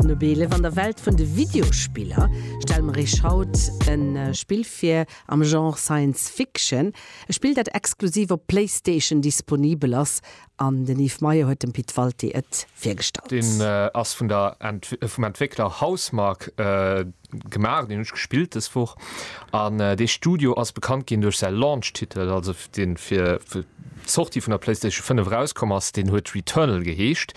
Nobele Van der Welt vun de Videospiller stelle mer Iech haut e Spill vir am Genre Science Fiction. E Spill, dat exklusiv op Playstation disponibel ass an den Yves Meyer huet dem Pit Walté et virgestallt. Deen ass vun der vum Entwéckler Housemarque. Gemaach, deen hunn ech gespillt dës Woch. An dee Studio ass bekannt ginn duerch säi Launch-Titel, also dee fir d'Sortie vun der PlayStation 5 erauskomm ass, deen huet Returnal geheescht.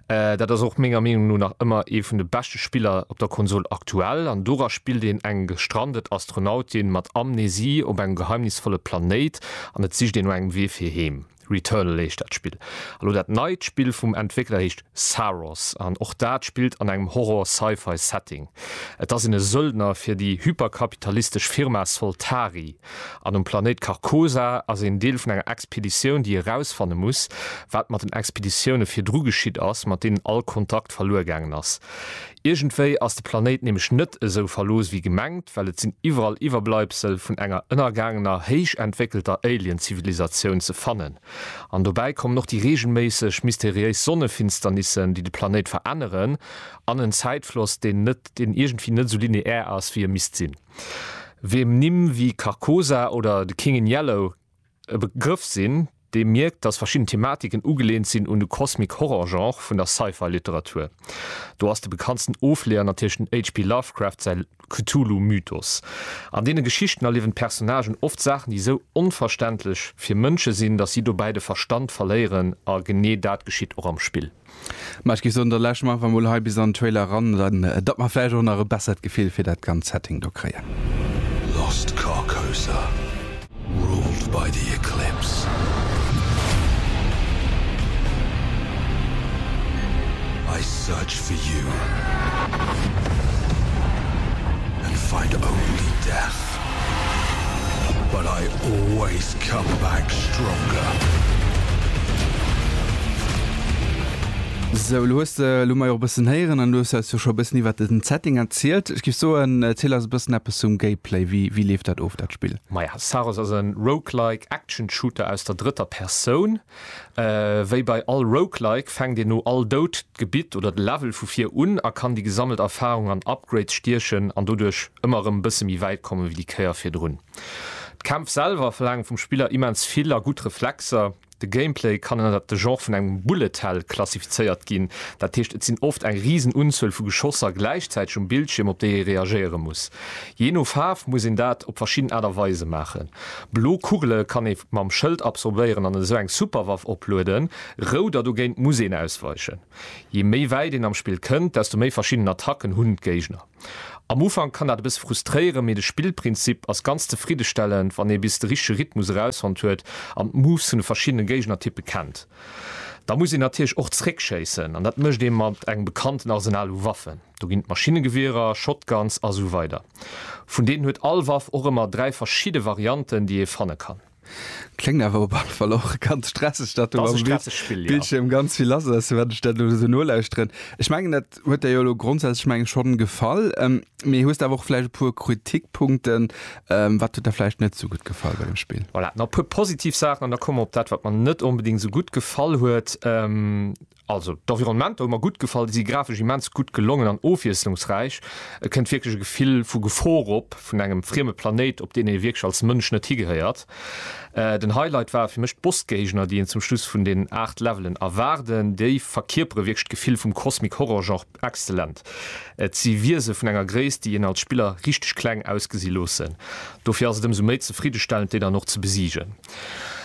Dat ass och menger Meenung no nach ëmmer ee vun de beschte Spiller op der Konsol aktuell. An dora spillt een eng gestrandet Astronautin mat Amnesie op engem geheimnisvolle Planéit an et sicht een no engem Wee fir heem. Returnal heescht dat Spill. A lo dat neit Spill vum Entwéckler heescht Saros an och dat spillt an engem Horror-Sci-Fi Setting. Et ass een e Söldner fir déi hyperkapitalistesch Firma Soltari an um Planéit Carcosa ass een Deel vun enger Expeditioun déi erausfanne muss wat mat den Expeditioune virdru geschitt ass mat deenen all Kontakt verluer gaangen ass. Iergendwéi ass de Planéit nämlech net esou verlooss wéi gemengt, well et sinn iwwerall Iwwerbleibsel vun enger ënnergaangener héich entwéckelter Alien-Zivilisatioun ze fannen. An dobäi kommen och déi reegelméisseg mysteriéis Sonnefinsternissen, déi de Planéit veränneren, an en Zäitfloss, deen net, deen iergendwéi net esou lineär ass, wéi e misst sinn. Wiem Nimm wéi Carcosa oder The King in Yellow e Begrëff sinn, dee mierkt, datt verschidden Thematiken ugeleent sinn un de Cosmic-Horror-Genre vun der Sci-Fi-Literatur. Do ass de bekanntsten Ofleeër natierlech den HP. Lovecraft säi Cthulhu-Mythos. An deene Geschichten erliewen d'Personnagen oft Saachen, déi esou onverständlech fir Mënsche sinn, datt si dobäi de Verstand verléieren, a genee dat geschitt och am Spill. Ma ech géif soen, da lauschteren mer einfach emol hei bis an den Trailer eran, datt mer vläicht och nach e bessert Gefill fir dat ganzt Setting do kréien. Lost Carcosa, ruled by the Eclipse. I search for you and find only death. Respekt. But I always come back stronger. Sou, elo hues de, elo hu mer jo och e bëssen héieren an elo hues de eis jo scho e bëssen iwwert den Setting erzielt. Ech géif soen, erziel eis e bëssen eppes zum Gameplay. Wéi, wéi leeft dat of, dat Spill? Maja, Saros ass e Roguelike Action Shooter aus der drëtter Persoun. Wéi bei all Roguelike fänkt een no all Doud d'Gebitt oder de Level vu vir un a kann déi gesammelt Erfarung an Upgrades stiechen an doduerch ëmmer erëm e bësse méi wäit komme wéi déi Kéier virdrun. D'Kämpf selwer verlaangen vum Spiller immens vill a gutt Reflexer. De Gameplay kann ënnert de Genre vun engem Bullet Hell klassifizéiert ginn, dat heescht et sinn oft eng risen Unzuel vu Geschosser gläichzäiteg um Bildschierm op déi ee reagéiere muss. Jee no Faarf muss een dat op verschidden Aart a Weise maachen. Blo Kugele kann ee mam Schëld absorbéieren an esou eng Superwaff oplueden, rout a dogéint muss een ausweichen. Je méi wäit een am Spill kënnt, desto méi verschidden Attacken hunn d'Géigner. Am Ufank kann dat e bësse frustréieren, mee de Spillprinzip ass ganz zefriddestellend, wann ee bis de richtege Rhythmus erausfonnt huet an d'Moves vun de verschiddene Géignertyppe kennt. Da muss een natierlech och zeréckschéissen an dat mécht ee mat engem bekannten Arsenal u Waffen, do ginn et Maschinnegewierer, Shotguns a sou weider. Vun deenen huet all Waff och ëmmer dräi verschidde Varianten, déi ee fanne kann. Kléngt awer op alle Fall och ganz stresseg, datt do am Bildschierm ganz vill lass ass, wat ech dat elo esou nolauschteren. Ech mengen, dat huet der jo elo grondsätzlech, mengen ech, schonn gefall. Mee hues de awer och vläicht e puer Kritikpunkten? Wat huet der vläicht net esou gutt gefall bei dem Spill? Voilà, nach e puer positiv Saachen an da komme mer op dat, wat mer net onbedéngt esou gutt gefall huet. Also d'Environnementer hu mer gutt gefall, déi si grafesch immens gutt gelongen an ofwiesslungsräich. Et kënnt wierklech e Gefill vu Gefor op, vun engem frieme Planéit, op deen ee wierklech als Mënsch net higehéiert. Den Highlight ware fir mech d'Bossgéigner, déi een zum Schluss vun den 8 Levelen erwaarden. Déi verkierpere wierklech d'Gefill vum Cosmic-Horror-Genre exzellent. Et si Wiese vun enger Gréisst, déi een als Spiller richteg kleng ausgesi loossen. Dofir ass et ëmsou méi zefriddestellend, déi dann och ze besiegen.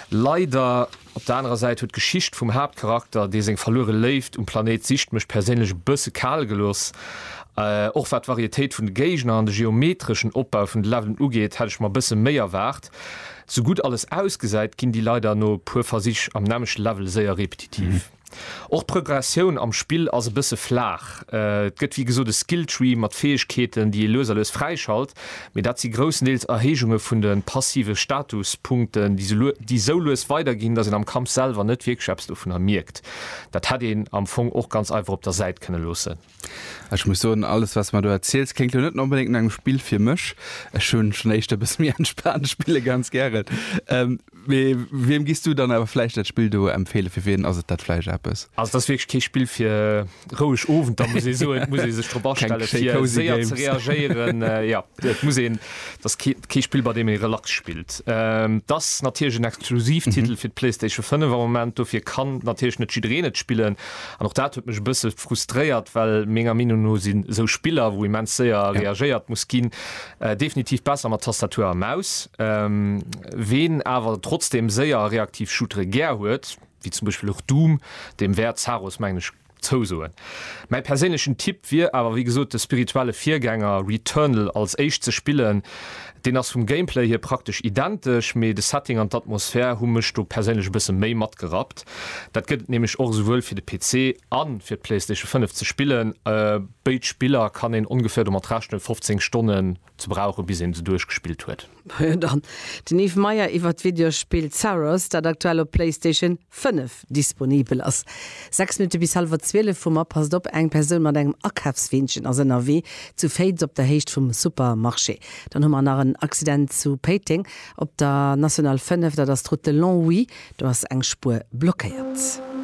Leider Op der anerer Säit huet d'Geschicht vum Haaptcharakter, dee seng verluere Léift um Planéit sicht, mech perséinlech e bësse kal gelooss. Och wat d'Varietéit vun de Géigner an de geometreschen Opbau vun de Levelen ugeet, hätt ech mer e bësse méi erwaart. Sou gutt alles ausgesäit, ginn déi leider no e puer Versich am nämmlechte Level séier repetitiv. Och d'Prögressioun am Spill ass e bësse flaach. Et gëtt wéi gesot e Skilltree mat Fäegkeeten, déi ee lues a lues fräischalt, mee dat si groussendeels Erhéijunge vun de passive Statuspunkten, déi sou lues weiderginn, datt een am Kampf selwer net wierklech eppes dovunner mierkt. Dat hätt een am Fong och ganz einfach op der Säit kënne loossen. Ech muss soen, alles wats mer do erziels kléngt lo net onbedéngt no engem Spill fir mech. Ech hunn schonn éischter e bësse méi entspaant spille ganz gären. Mee wiem giss du dann awer vläicht dat Spill do empfeelen? Fir wien ass et dat vläicht eppes? Also et ass wierklech kee Spill fir roueg Owenter muss ee soen. Et muss ee sech drop astellen fir séier ze reagéieren. Jo, et muss een, et ass kee Spill bei deem ee relax spillt. Et ass natierlech en Exklusivtitel fir d'Playstation 5 am Moment, dofir kann natierlech net jiddereen et spillen. An och dat huet mech e bësse frustréiert, well menger Meenung no si sou Spiller, wou immens séier reagéiert muss ginn, definitiv besser mat Tastatur a Maus. Ween awer trotzdeem séier a reaktiv Shootere gär huet, wéi zum Beispill och Doom, deem wäert Zaros, mengen ech, zousoen. Mäi perséinlechen Tipp wier awer wéi gesot, de spirituelle Virgänger Returnal als éischt ze spillen, Deen ass vum Gameplay hier praktesch identesch, mee de Setting an d'Atmosphär hu mech do perséinlech e bësse méi matgerappt. Dat gëtt et nämlech och esouwuel fir de PC a fir d'Playstation 5 ze spillen. Béid Spiller kann een ongeféier domat rechnen, 15 Stonnen ze brauchen, bis een se duerchgespillt huet. Majo dann, den Yves Meyer iwwert d'Videospill Zaros, dat aktuell op Playstation. 5 disponibel ass. 6 Minutte bis hallwer 12 vum a Passt op, eng Persoun mat engem Akafsweenchen ass ënnerwee zu Féiz op der Héicht vum Supermarché. Dann hu mer nach en Accident zu Péiteng op der National 5, dat ass d'Route de Longwy, do ass eng Spuer blockéiert.